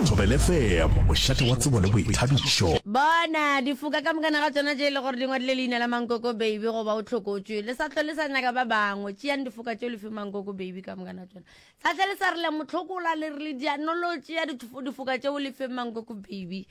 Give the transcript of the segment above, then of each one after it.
Thobele FM, mošate wa tsebo le boithabišo. Bona, difoka ka mokana ga tšona tše e le gore di ngwadile leina la Mankoko Baby goba o hlokotšwe, le sa hlwe le sa nyaka ba bangwe. Tšeang difoka tšeo le fe Mankoko Baby ka mokana ga tšona. Sa hlwe le sa re le a mo hlokola, le re le diano lo tšea dithofo- difoka tšeo le fe Mankoko Baby.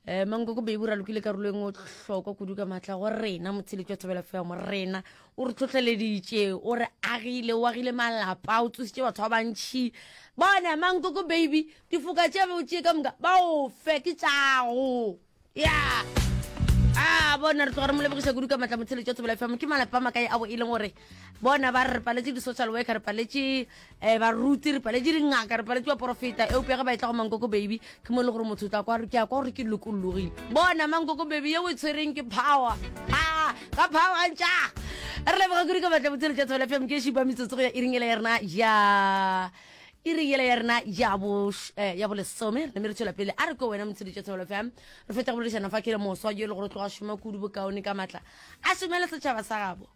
Eh, Mankoko Baby o ralokile karolo e nngwe hlokwa kudu ka maatla go rena, motheletši wa Thobela FM, rena. o re tlhotlheleditše o re agile o agile malapa o tsositše batho ba bantšhi bona mankoko baby difoka tše tše ka moka ba o fe ke tšago ya a bona re tloga re mo lebogiša kudu ka matla motsheletšo tsebela fm ke malapa makae a bo e leng gore bona ba re paletše di-social worker re paletše Eh, baruti re paletše dingaka re paletše baporofeta eupša ge ba etla go mankoko baby ke mo e le gore motho o tla kwa ke a kwa gore ke lokologile bona mankoko baby yeo e tshwereng ke power a ka power ntša re leboga kudu ka batla botshelo tša tshwela fm ke šipa metsotso go ya iring ela ya rena ya iring ela ya rena ya bo eh, ya bolesome re name re tshwela pele a re ko wena motshedi tša tshwela fm re fetsa go boledišana fa ke le moswa jo e le gore o tloga šoma kudu bokaone ka matla a šomele setšhaba sa gabo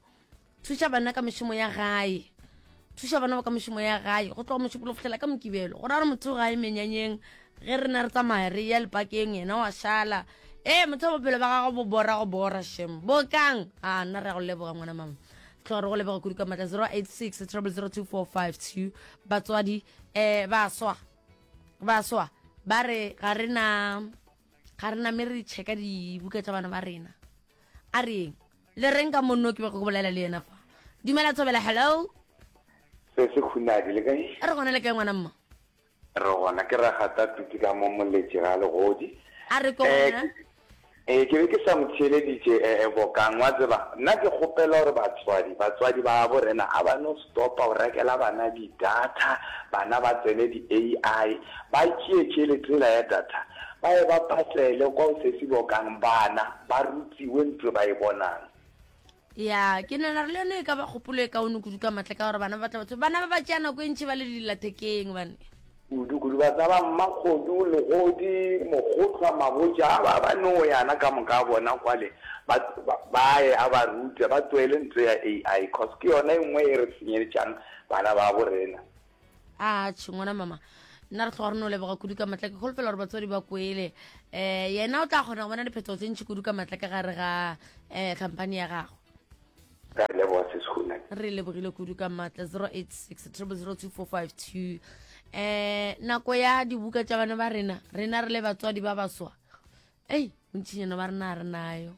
thuša bana ka mešomo ya gae thuša bana ba ka mešomo ya gae go tloga mošupolo fihlela ka mokibelo go ra gore motho gae menyanyeng ge re na re tsamaya re ya lepakeng yena wa šala ee motho wa bophelo ba gago bo bora go bora shem bokang a nna re ya go leboga ngwana mama tlhogo re go leboga kudu ka matla 086 02452 batswadi um ba swa ba swa ba re ga re na ga re na me re checka dibuka tsa bana ba rena a reng Le reng ka monno ke bego ke bolela le yena fa? Dumela Thobela, hello. Se se khunadi le kae? A re gona le kae ngwana mma? Re gona ke ragata tuti ka mo moletše ga legodi. A re ko eh, gona. Eh ke be ke sa mo theeleditše eh, eh bokang wa tseba nna ke kgopela gore batswadi batswadi ba bo rena a ba no Stopa o rekela bana di data, bana ba tsene di AI, ba tšee tšelete yela ya data ba ye ba patele kwa o sesi bokang bana ba rutiwe ntwe ba e bonang. Ya, ke nahana gore le yone e ka ba kgopolo e kaone kudu ka matla ka gore bana ba tla ba tshwere, bana ba ba tšea nako e ntši ba le dillathekeng bane. Kudu-kudu ba tšaba mmakgodu, legodi, mokgohlwa, magoja a ba ba nooyana ka moka a bona kwale ba ba ye a ba rute ba tsoele nto ya AI cos ke yona e nngwe e re tsenyeletšang bana ba bo rena. Atšhe ngwana mama nna re tloga re no leboga kudu ka matla ke kholofela gore batswadi ba kwele um yena o tla kgona go bona diphetogo tse ntšhi kudu ka matla ka gare ga um khamphane ya gago ka re leboga se sehuna re lebogile kudu ka maatla 086 002452 eh nako ya dibuka tša bana ba rena rena re le batswadi ba baswa ei bontšhinyana ba rena re nayo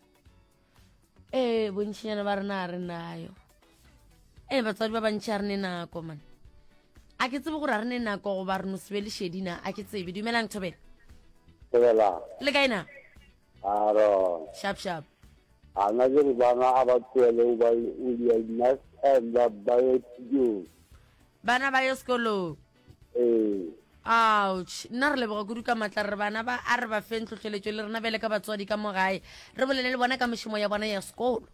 ee bontšhinyana ba rena re nayo ee batswadi ba bantšhi a re ne nako mane a ke tsebe gore a re ne nako goba re no sebe lešedina a ke tsebe dumelang thobela le kae na Aaron. Sharp sharp. Ana ke re bana a ba tloele o ba o dia nice time ba ba ye sekolong. Bana ba ye sekolong. Ee. Ouch. Nna re leboga kudu ka matla re bana ba a re ba feng tlhotlheletšo le rena bjale ka batswadi ka mo gae re bolele le bona ka mešomo ya bona ya sekolo.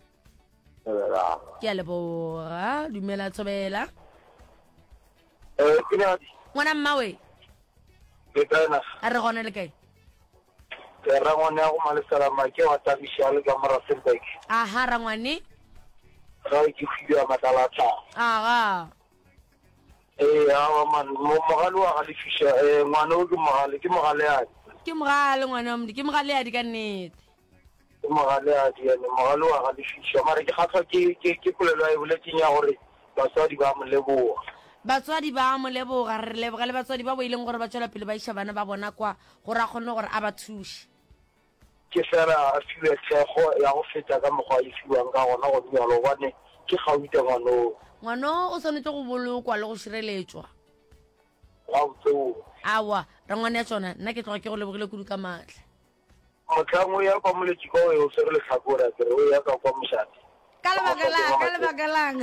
Ke a leboga. Dumela Thobela. Ee, ke na. Ngwana mmawe. Ke kae na? A re gona le kae? Ee, rangwane ya go malesela make wa Tabiši a le ka mo Rustenburg. Aha, rangwane. Ga e ke hwile ya matlala a tlhago. Aga. Ee, awa man, mo, mogale wa ga lefiša, ee, ngwane o ke mogale, ke mogaleadi. Ke mogale, ngwana wa mdi, ke mogaleadi ka nnete. Ke mogale a di ene mogale wa ga Lefiša mare ke kgahlwa ke ke ke polelo a e boletseng ya gore batswadi ba mo leboga. Batswadi ba mo leboga, re leboga le batswadi ba bo e leng gore ba tšwela pele ba iša bana ba bona kwa gore a kgonne gore a ba thuše. Ke fela a fiwe thekgo ya go feta ka mokgwa a e fiwang ka gona gone bjalo gobane ke kgaute ngwanoo. Ngwanoo o swanetše go bolokwa le go šireletšwa. Gautseong. Aowa, rangwane ya tšona, nna ke tloga ke go lebogile kudu ka maatla. Mohlang o ya kwa moletši kwa o e o swere lehlakore, a ke re o ya ka kwa mošate. Ka lebaka la'ng, ka lebaka la'ng?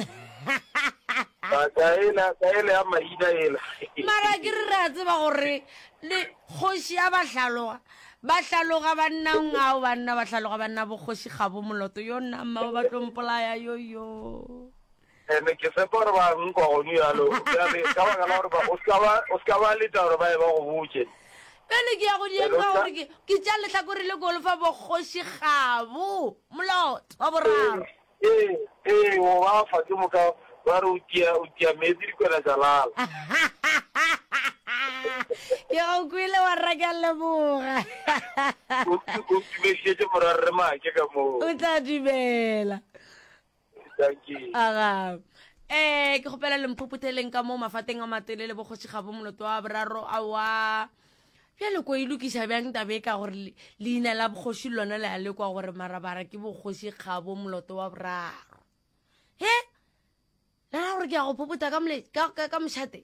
Ka ela, ka ela ya maina ela. Mara ke re re a tseba gore le kgoši ya ba hlaloga, ba hlaloga bannang ao, banna ba hlaloga banna, bokgoši ga bo moloto, yo nna mma ba tlo mpolaya, yoyo. And ke tshepa gore ba nkwa gonu yalo. Bjale, ka baka la gore ba, o ska ba, o ska ba leta gore ba ye ba go botše. Bjale ke ya go di And o ema ska. gore ke, ke tša lehlakore le golfa bokgoši gabo, molot, wa boraro. Ee, ee, o ba fa ke moka, ba re o tia, o tia meetse dikwena tša lala. Ke go kwele wa rra ke a leboga. O, o ntumedišetše morwa Rre Make ka moo. O tla dumela. aga eh ke gopela le mphopotheleng ka mo mafateng a matele le bogoši ga bo moloto wa boraro a wa bjale ko e lokiša bjang tabe ka gore leina la bogoši le lona le a le kwa gore marabara ke bogoši ga bo moloto wa boraro he lera gore ke ya go phopota ka mošate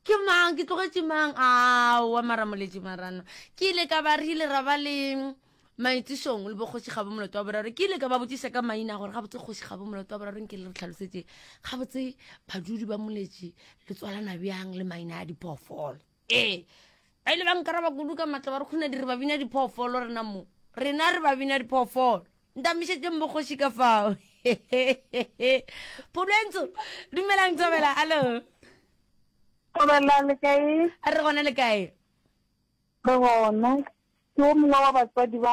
Ke mang? Ke tlogetše mang? Aowa, mara moletši marano. Ke ile ka ba re ile ra ba le maitišong le bokgoši ga bo moloto wa boraro ke ile ka ba botšiša ka maina gore gabotse kgoši ga bo moloto wa boraro nke le re tlhalosetse gabotse badudi ba moletši le tswalana bjang le maina a diphoofolo ee ba ile ba nkaraba kudu ka matla ba re kgona di re ba bina diphoofolo rena mo rena re ba bina diphoofolo ntamišetseng bokgoši ka fao pholwentso dumelang thabela allo Kgobela le kae? A re gona le kae? Re gona. Ke o mongwe wa batswadi ba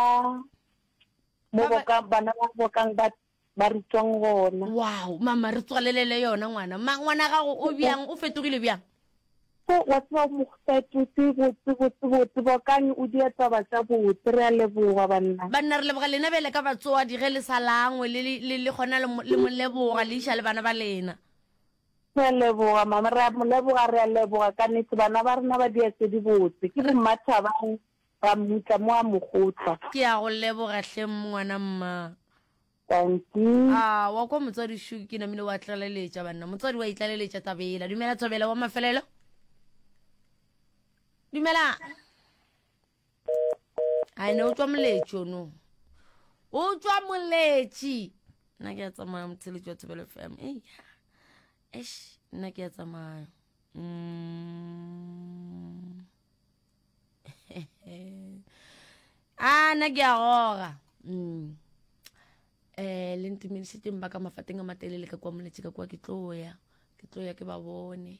mo boka bana ba bokang ba ba re tswang gona. Wow, mama re tswalelele yona ngwana. Ma ngwana gago o bjang? O fetogile bjang? Ko wa tswa mo fetotse botse botse botse bokang o di etsa ba tsa botse re a leboga banna. Banna re leboga lena bele ka batswadi ge le sa langwe le le le gona le moleboga le isha le bana ba lena. Re a leboga mama, re a mo leboga, re a leboga ka nete, bana ba rena ba dia tse di botse, ke bo mma Thabang ba mmutla mo a Mogotla. Ke a go leboga hle ngwana mma. Dankie. Aa wa kwa motswadi shu ke namile wa tlaleletša banna motswadi wa itlaleletša tabela dumela thobela wa mafelelo dumela a ne o tswa moletši ono o tswa moletši nna ke ya tsamaya motheletši wa thobelo fm eya esh nna ke ya tsamaya mm. a ah, nna ke ya goga mm. eh le ntumedišetseng ba ka mafateng a matelele ka kwa moletši ka kwa ke tloya ke tloya ke ba bone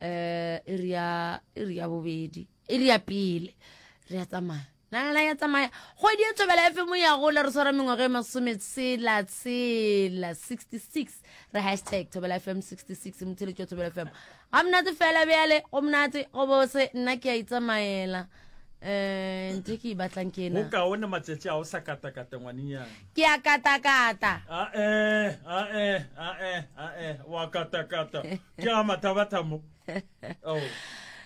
eh iri ya iri ya bobedi iri ya pele re ya tsamaya nalala ya tsamaya kgwedi e tobela efe mo ya gola re swara mengwaga e masome tshela tshela 66 re hashtag tobela fm 66 motheletšo tobela fm ga monate fela bjale go monate go bose nna ke a itsamaela eh ntho ke e batlang ke ena bokaone matšatši a o sa katakata ngwanenyana ke a katakata ae ae ae ae wa katakata ke ga mathabatha mo oh.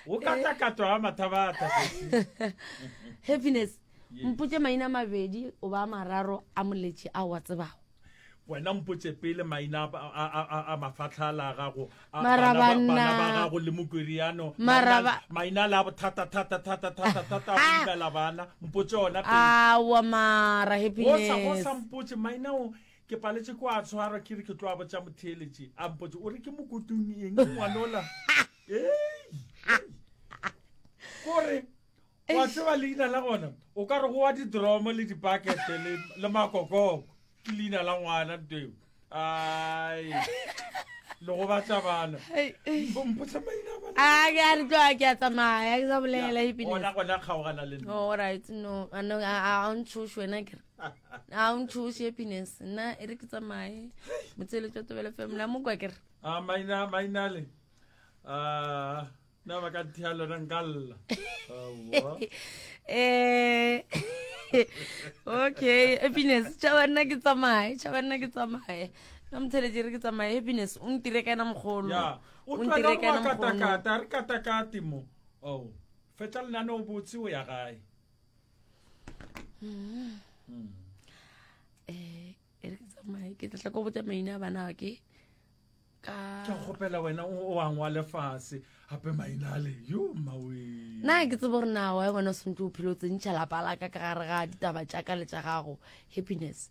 o katakatwa ga mathabatha happiness mpotse maina mabedi o ba mararo a moletše a wa tsebago wena mpotse pele maina a mafatlhala a gago bana ba gago le mokweriano maina le a bothata thata thata thata thata go imela bana mpotse ona pele awa mara happiness go sa mpotse maina o Ke paletše ko a tshwarwa ke re ke tlo a botša motheeletše a mpotše o re ke mokotung eng ngwanola kore wa tseba leina la gona o ka re go wa didromo le dipakete le makokoko ke leina la ngwana nto eo ai le go batla bana mpotsa maina bana a ke a re tloa ke a tsamaya ke sa bolela ebile ona gona kgaogana le nna all right no a no a a ntshosh wena ke re a o ntšhoše happiness nna e re ke tsamaye motseletso wa tobele fm la mokwa kere a ah, maina mainale a ah, na ba ka thea lona nkalla eh okay happiness tšhaba nna ke tsamaye tšhaba nna ke tsamaye na motsheletse re ke tsamaye happiness o ntire ka ena mogolo o ntire ka ena mogolo re katakate mo oh fetla lenane o botse o ya gae um e re ke tsamaye ke tlatla ko botsa maina a bana ke ka ke kgopela wena o wang wa lefase gape maina a le yo mawe na ke tsebo gore na wa gona o swantse o phelo tsentšha lapa laka ka gare ga ditaba tša ka le tša gago happiness